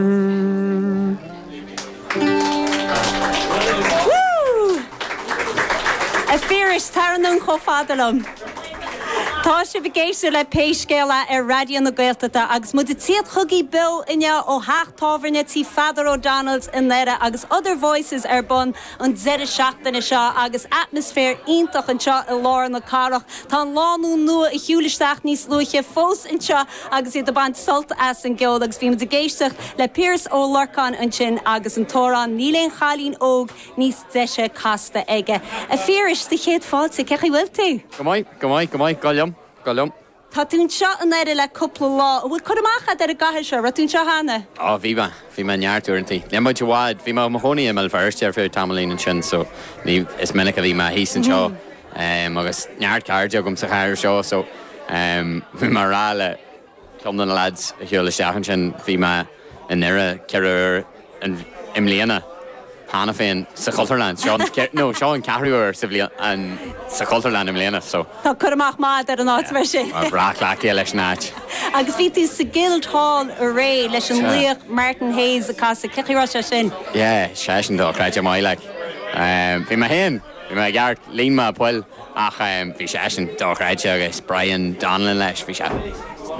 A Phiarais, tar anonn chomh fada liom. Tá sibh ag éisteacht le Pé Scéal É ar Raidió na Gaeltachta agus muid ag tíocht chugaí beo inniu ó theach tábhairne tí Pheadar O'Donnell's i nDoire agus Other Voices ar bun an deireadh seachtaine seo agus atmaisféar iontach anseo i lár na cathrach. Tá an lánúin nua a shiúil isteach níos luaithe fós anseo agus iad ag baint sult as an gceol agus bhí muid ag éisteacht le Piaras Ó Lorcáin ansin agus an t-amhrán Níl Aon Chailín Óg Níos Deise casta aige. A Phiarais, do chéad fáilte, cé chaoi bhfuil tú? Go maith, go maith, go maith, go leor, go leor. Tá tú anseo i nDoire le cúpla lá, an bhfuil cur amach agat ar an gcathair seo, raibh tú anseo cheana? Á, bhí mé. Bhí mé neart uaireanta. Níl muid i bhfad. Bhí mé i mo chónaí i mBéal Feirste ar feadh tamaillín ansin so ní, is minic a bhí mé thíos anseo agus neart cairde agam sa chathair seo so bhí mé a' rá le ceann de na lads a shiúil isteach ansin, bhí mé i nDoire ceithre huaire i mbliana. cheana féin sa Chultúrlann. Seo an, no, seo an ceathrú uair sa bhliain, sa Chultúrlann i mbliana, so. Tá cur amach maith ar an áit, mar sin. Tá mé cleachtaithe leis an áit. Agus bhí tú sa Guildhall aréir leis an laoch Martin Hayes ag casadh. Cé chaoi raibh sé sin? Yeah, seisean dochreidte maith, like. Bhí mé féin. Bhí mé i gceart, líon mé poill ach bhí seisean dochreidte agus Brian Donnellan leis, bhí sé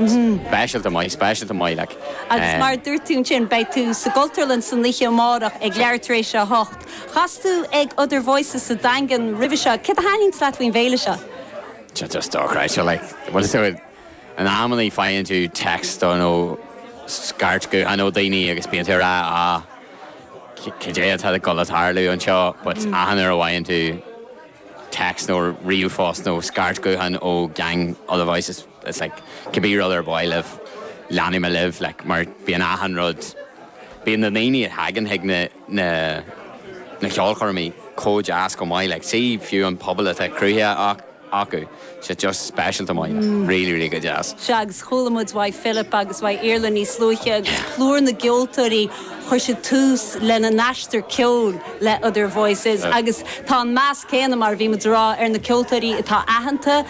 speisialta maith, speisialta maith like. Agus mar a dúirt tú ansin, beidh tú sa gCultúrlann san oíche amárach ag leathuair tar éis a hocht. Chas tú ag Other Voices sa Daingean roimhe seo, céard a thaitníonns leat faoin bhféile seo? Tá just dochreidte like. In amannaí faigheann tú text or nó scairt gutháin ó daoine agus bíonn tú a rá ah cad é atá ag gabháil a tharlú anseo but achan uair a fhaigheann tú text nó ríomhphost nó scairt gutháin ó gang other voices it's like could be rud ar bith libh leanfaidh mé libh like mar bíonn achan rud bíonn na daoine a thagann chuig na na ceolchoirmí chomh deas chomh maith like so fiú an pobal atá cruthaithe acu siad just speisialta maith like really really go deas. Sea, agus chuala muid ó Philip agus ó Iarla níos luaithe agus plúr na gceoltóirí chuir siad tús lena n-aistear ceoil le Other Voices agus tá an meas céanna mar a bhí muid a rá ar na ceoltóirí atá aitheanta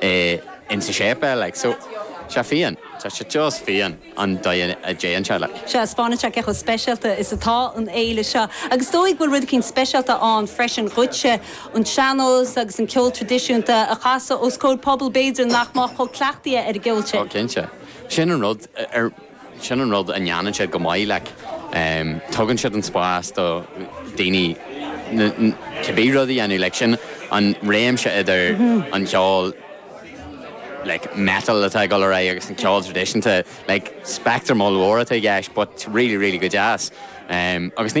é in sa séipéal like so sea fiáin tá sé just fiáin an dóigh a dtéann sé like. Sea, taispeánann sé cé chomh speisialta is atá an fhéile seo agus is dóigh go bhfuil rud eicínt speisialta ann freisin dhuitse, an sean-nós agus an ceol tradisiúnta a chasadh os comhair pobal b'fhéidir nach mbeadh chomh cleachtaithe ar an gceol sin. Ó cinnte. Sin an rud ar. Sin an rud a ndéanann siad go maith, like, tugann siad an spás do dhaoine cibé rud a dhéanamh, like, sin an réimse idir an ceol, like, metal atá ag dul ar aghaidh agus an ceol traidisiúnta, like, speictream ollmhór atá i gceist but really, really go deas. Agus ní.